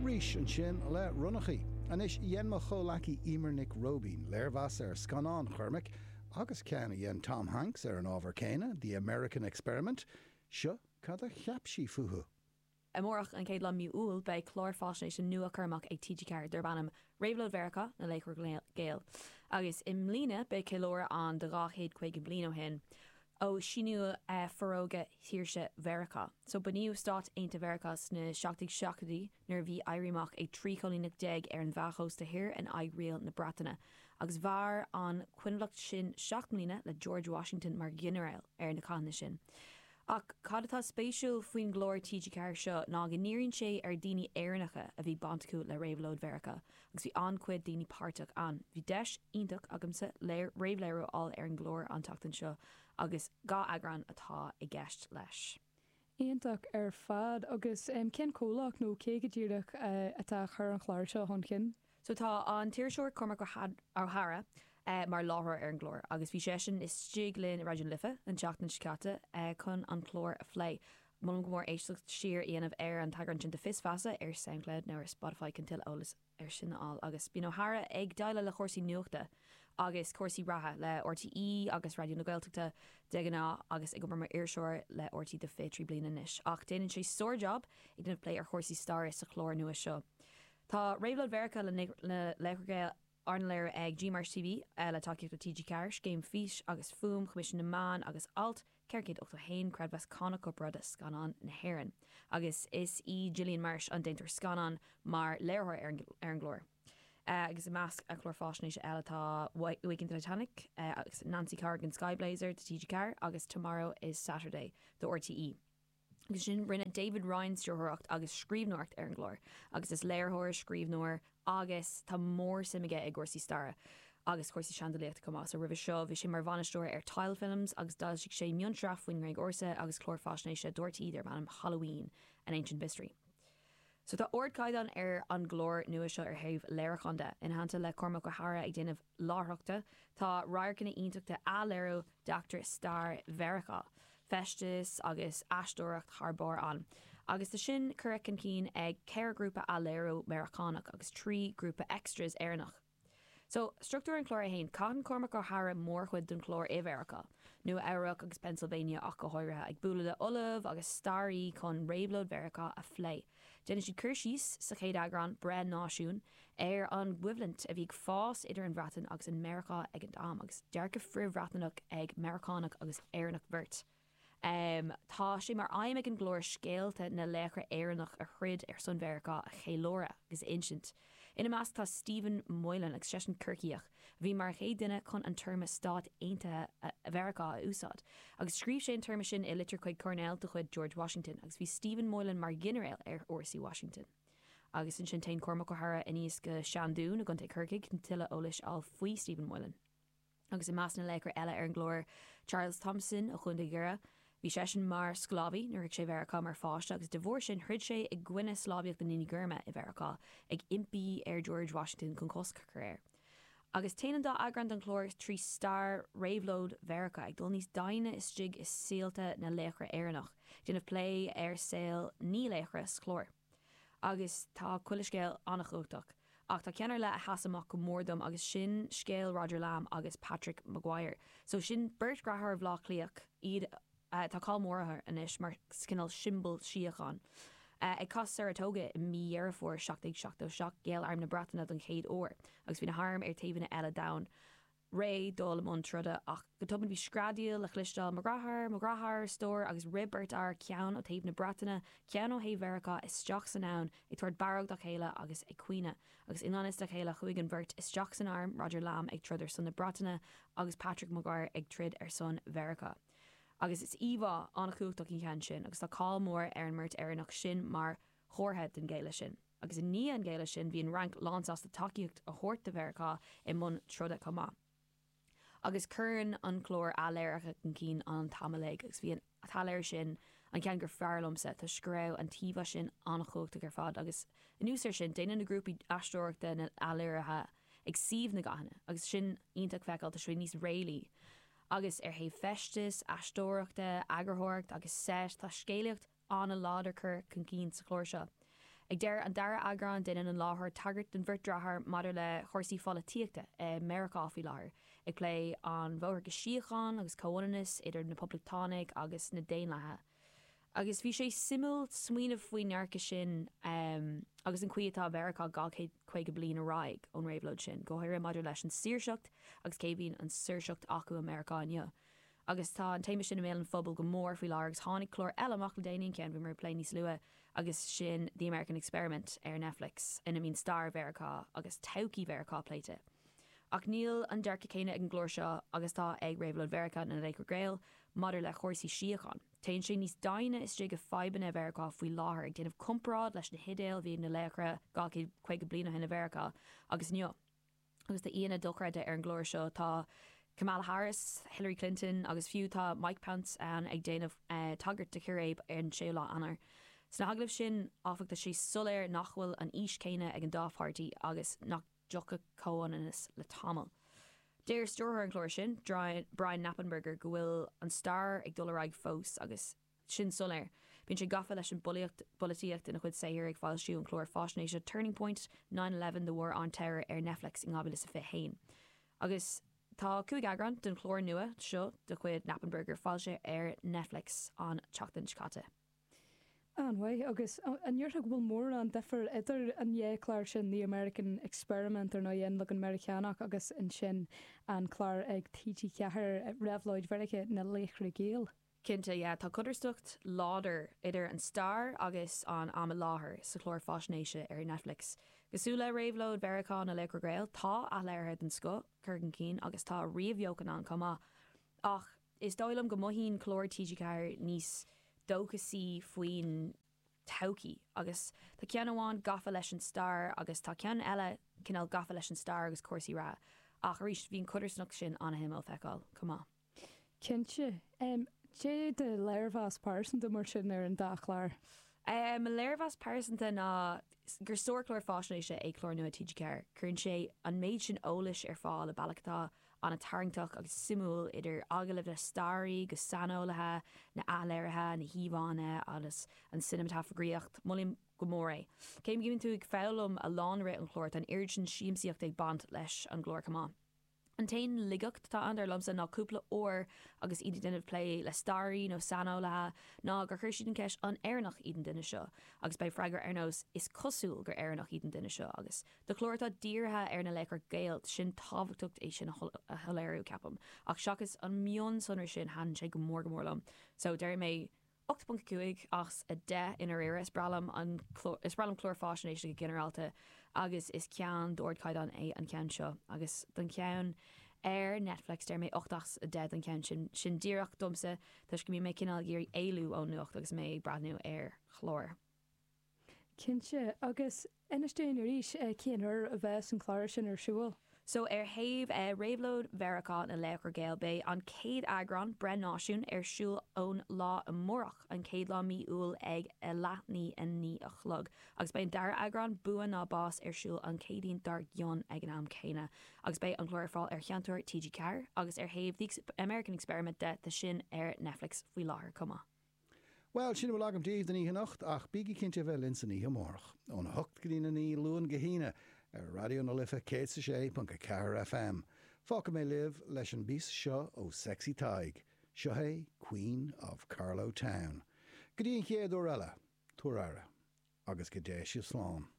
Rís ansin le ronnachaí. Anois, dhein mo chomhleacaí Emer Nic Róibín léirmheas ar scannán Chormaic agus ceann a dhein Tom Hanks ar an ábhar céanna, The American Experiment. Seo cad a cheap sí fúthu. Amárach, an chéad lá de mí Iúil, beidh clár faisnéise nua á chur amach ag TG4 darb ainm Réabhlóid Mheiriceá, Na Laochra Gael. Agus i mbliana beidh ceiliúradh ann de 250 bliain ó shin. ó síníodh Forógra Shaoirse Mheiriceá. So bunaíodh Stáit Aontaithe Mheiriceá sna seacht déag seachtóidí nuair a bhí éirí amach ag trí choilíneacht déag ar an Mheá Chósta Thoir in aghaidh riail na Breataine. Agus mhair an choinbhleacht sin seacht mbliana le George Washington mar ghinearéal ar na cathanna sin. Ach cad atá spéisiúil faoin gclár TG4 seo ná go ndíríonn sé ar daoine Éireannacha a bhí baint acu le Réabhlóid Mheiriceá Agus bhí an-chuid daoine páirteach ann. Bhí deis iontach agamsa léir, réamhléiriú a fháil ar an gclár an tseachtain seo agus dhá eagrán atá i gceist leis. Iontach ar fad. Agus cén comhlacht nó cé go díreach atá a chur an chláir seo chun chinn? So tá an t-iriseoir Cormac Ó hEadhra mar láithreoir ar an gclár agus bhí seisean istigh linn i Raidió na Life an tseachtain seo caite chun an clár a phlé. Molaim go mór éisteacht siar a dhéanamh ar an t-eagrán sin de Fios Feasa ar Soundcloud nó ar Spotify chun tuilleadh eolas ar sin a fháil agus Bíonn Ó hEadhra ag déileáil le chúrsaí nuachta agus cúrsaí reatha le RTÉ agus Raidió na Gaeltachta de ghnáth agus ag obair mar iriseoir le RTÉ do 23 bliana anois ach déanann sé sár-jab ag déanamh plé ar chúrsaí staire sa chlár nua seo Tá Réabhlóid Mheiriceá Na Laochra Gael arna léiriú ag G Marsh TV le tacaíocht ó TG4, Scéim Fís agus Fuaim, Choimisiún na Meán agus Alt, 481 creidmheas cánach Corparáide Scannán na hÉireann agus is í Gillian Marsh an déantóir scannán mar léiritheoir ar an gclár. agus i measc a clár faisnéise eile tá Waking Titanic agus Nancy Corrigan Skyblazer do TG4 agus Tomorrow is Saturday do RTÉ. Agus ansin rinne David Ryan stiúrthóireacht agus scríbhneoireacht ar an gclár agus is léiritheoir, scríbhneoir agus tá mór suim aige i gcúrsaí staire agus cúrsaí seandalaíochta chomh maith. So roimhe seo bhí sé mar bhainisteoir ar Tile Films agus d'fhoilsigh sé mionsraith faoin nGréig Ársa agus clár faisnéise do RTÉ darb ainm Halloween, An Ancient Mystery. So tá ardchaighdeán ar an gclár nua seo ar thaobh léiriúcháin de. Ina theannta le Cormac Ó hEadhra ag déanamh láithreachta, tá radharcanna iontacha athléiriú d'eachtraí stair Mheiriceá, feisteas agus aisteoireacht thar barr ann. Agus tá sin curtha chun cinn ag ceithre ghrúpa athléiriú Meiriceánach agus trí ghrúpa extras Éireannach. So, structúr an chláir é fhéin. Caitheann Cormac Ó hEadhra mórchuid den chlár i Mheiriceá, Nua Eabhrac agus Pennsylvania ach go háirithe, ag bualadh le ollaimh agus staraí chun réabhlóid Mheiriceá a phlé. Déanann siad cur síos, sa chéad eagrán, Breith Náisiún, ar an gcoimhlint a bhí ag fás idir an Bhreatain agus an Meiriceá ag an am, agus dearcadh frith-Bhreatnach ag Meiriceánach agus Éireannach beirt. Tá sé mar aidhm ag an gclár scéalta na laochra Éireannach a throid ar son Mheiriceá a cheiliúradh agus a insint. Ina measc tá Stephen Moylan agus seisean Corcaíoch a bhí mar an chéad duine chun an téarma Stáit Aontaithe Mheiriceá a úsáid agus scríobh sé an téarma sin i litir chuig Coirnéal de chuid George Washington agus bhí Stephen Moylan mar ghinearéal ar fhórsaí Washington. Agus ansin téann Cormac Ó hEadhra aníos go Seandún i gContae Chorcaí chun tuilleadh eolais a fháil faoi Stephen Moylan. Agus i measc na laochra eile ar an gclár, Charles Thomson ó Chontae Dhoire. Bhí seisean mar sclábhaí nuair a chuaigh sé Mheiriceá mar pháiste agus de bharr sin throid sé i gcoinne sclábhaíocht na ndaoine gorma i Mheiriceá, ag impí ar George Washington chun cosc a chur air. Agus téann an dá eagrán den chlár trí stair réabhlóid Mheiriceá, ag dul níos doimhne istigh i saolta na laochra Éireannach, ag déanamh plé ar saol naoi laochra sa chlár. Agus tá chuile scéal an-chumhachtach. Ach tá ceann ar leith a sheas amach go mór dom agus sin scéal Roger Lamb agus Patrick Maguire. So sin beirt deartháir ó Bhleá Cliath iad, tá cáil mór orthu anois mar cineál siombail síocháin. Ag cath Saratoga i mí Dheireadh Fómhair 1777 ghéill arm na Breataine don chéad uair agus bhí na hairm ar taobhanna eile d'abhainn. réidh dul i mbun troda ach go tobann bhí screadaíl le chloisteáil, Mo dheartháir! Mo dheartháir! A stór agus rith beirt fhear, ceann ó thaobh na Breataine, ceann ó thaobh Mheiriceá, isteach san abhainn, ag tabhairt barróg dá chéile agus ag caoineadh. Agus i ngan fhios dá chéile chuaigh an bheirt isteach san arm, Roger Lamb ag troid ar son na Breataine agus Patrick Maguire ag troid ar son Mheiriceá. Agus is íomhá an-chumhachtach í an ceann sin agus tá cáil mhór ar an mbeirt Éireannach sin mar chomhartha den ghéilleadh sin. Agus i ndiaidh an ghéilleadh sin, bhí an Fhrainc lánsásta tacaíocht a thabhairt do Mheiriceá i mbun troda chomh maith. Agus cuireann an clár athléirithe chun cinn an t-am uilig agus bhí an t-athléiriú sin an ceann gur fearr liomsa toisc go raibh an t-íomhá sin an-chumhachtach ar fad agus anuas air sin, déanann na grúpaí aisteoireachta na hathléirithe ag suíomh na gcathanna agus sin iontach feiceáil toisc go bhfuil níos réalaí agus ar thaobh feistis, aisteoireachta, eagarthóireacht agus seit, tá scéalaíocht an-láidir curtha chun cinn sa chlár seo. Ag deireadh an dara eagrán déanann an láithreoir tagairt don bheirt deartháir maidir le chúrsaí pholaitíochta i Meiriceá faoi láthair, ag plé an bhóthar go síocháin agus comhionannas idir na Poblachtánaigh agus na Daonlathaigh. Agus bhí sé suimiúil smaoineamh faoin ndearcadh sin agus an chaoi atá Mheiriceá dhá chéad caoga bliain ar aghaidh ón réabhlóid sin, go háirithe maidir leis an saoirseacht agus cé a bhíonn an saoirseacht acu i Meiriceá inniu. Agus tá an téama sin i mbéal an phobail go mór faoi láthair agus tháinig clár eile amach le déanaí, an ceann a bhí mé ag plé níos luaithe, agus sin The American Experiment ar Netflix ina mbíonn stair Mheiriceá agus todhchaí Mheiriceá pléite. Ach níl an dearcadh céanna ag an gclár seo agus atá ag Réabhlóid Mheiriceá na Laochra Gael maidir le chúrsaí síocháin. Téann sé níos doimhne istigh i fadhbanna Mheiriceá faoi láthair, ag déanamh comparáid leis na hidéil a bhí ag na laochra 250 bliain ó shin i Mheiriceá agus inniu. Agus tá aíonna dochreidte ar an gclár seo. Tá Kamala Harris, Hillary Clinton agus fiú tá Mike Pence ann ag déanamh tagairt do chíréib ar an 6ú lá Eanáir. Sna hagallaimh sin áfach tá sé soiléir nach bhfuil an fhís céanna ag an dá pháirtí agus nach dtiocfaidh comhionannas le tamall. Deir stiúrthóir an chláir sin, Brian Knappenberger go bhfuil an stair ag dul ar aghaidh fós agus. sin soiléir. Bíonn sé gafa leis an bpolaíocht, bpolaitíocht ina chuid saothair, ag foilsiú an chláir faisnéise Turning Point, Nine Eleven, The War on Terror ar Netflix in 2021. Agus tá cúig eagrán den chlár nua seo de chuid Knappenberger foilsithe ar Netflix an tseachtain seo caite. An-mhaith. Agus an ndéarfá go bhfuil mórán duifir idir an dhá chlár sin, The American Experiment ar ndóigh, An Leagan Meiriceánach agus ansin an clár ag TG4, Réabhlóid Mheiriceá, Na Laochra Gael? Cinnte, yeah, tá codarsnacht láidir idir an stair agus an am i láthair sa chlár faisnéise ar Netflix. Cosúil le réabhlóid Mheiriceá na Laochra Gael, tá athléirithe den scoth curtha chun cinn agus tá ríomhbheochan ann chomh maith. Ach is dóigh liom go mothaíonn cláir TG4 níos dóchasaí faoin todhchaí agus tá ceann amháin gafa leis an stair agus tá ceann eile cineál gafa leis an stair agus cúrsaí reatha ach arís bhí an chodarsnacht sin an-shuimiúil feiceáil chomh maith. Cinnte. Cad é do léirmheas pearsanta mar sin ar an dá chlár? Mo léirmheas pearsanta ná gur sárchlár faisnéise é clár nua TG4. Cuireann sé an méid sin eolais ar fáil i bealach atá ana tarraingteach agus suimiúil idir agallaimh le staraithe agus saineolaithe, na athléirithe, na híomhánna agus an cineamatagraíocht. Molaim go mór é. Cé go mbíonn tú ag foghlaim a lán i rith an chláir, tá an oiread sin siamsaíocht ag baint leis an gclár chomh maith. An t-aon ligeacht atá ann, dar liomsa, ná cúpla uair agus iad ag déanamh plé le staraí nó saineolaithe ná gur chuir siad an cheist 'An Éireannach iad an duine seo? agus bheadh freagra ar nós 'Is cosúil gur Éireannach iad an duine seo' agus do chlár atá dírithe ar na laochra Gael, tá sé tábhachtach é sin a shoiléiriú, ceapaim, ach seachas an mion-sonra sin thaitin sé go mór go mór liom. So, déarfaidh mé. 8.5 as 10 i ndáiríre. Is breá liom an clár, is breá liom cláir faisnéise go ginearálta agus is ceann d'ardchaighdeán é an ceann seo. Agus don cheann ar Netflix deir mé 8 as 10 don cheann sin. Sin díreach domsa toisc go mbíonn mé cineál ag iarraidh éalú ón nuacht agus mé ag breathnú ar chlár. Cinnte. Agus inis dúinn arís cén uair a bheas an clár sin ar siúl? So ar thaobh Réabhlóid Mheiriceá na Laochra Gael beidh an chéad eagrán, Breith Náisiún, ar siúl ón lá amárach, an chéad lá mí Iúil ag a leath i ndiaidh a naoi a chlog. Agus beidh an dara eagrán, Bua nó Bás, ar siúl an Chéadaoin dár gcionn ag an am céanna. Agus beidh an clár ar fáil ar Sheinnteoir TG4. Agus ar thaobh The American Experiment de, tá sin ar Netflix faoi láthair chomh maith. Bhuel, sin a bhfuil agam daoibh don oíche anocht, ach bígí cinnte a bheith linn san oíche amárach, óna hocht go dtína naoi, Luan go hAoine, ar Raidió na Life 106.4 FM. Fágfaidh mé libh leis an bpíosa seo ó Sexy Tadhg. Seo é Queen of Carlow Town. Go dtí an chéad uair eile, tabhair aire, agus go dté sibh slán.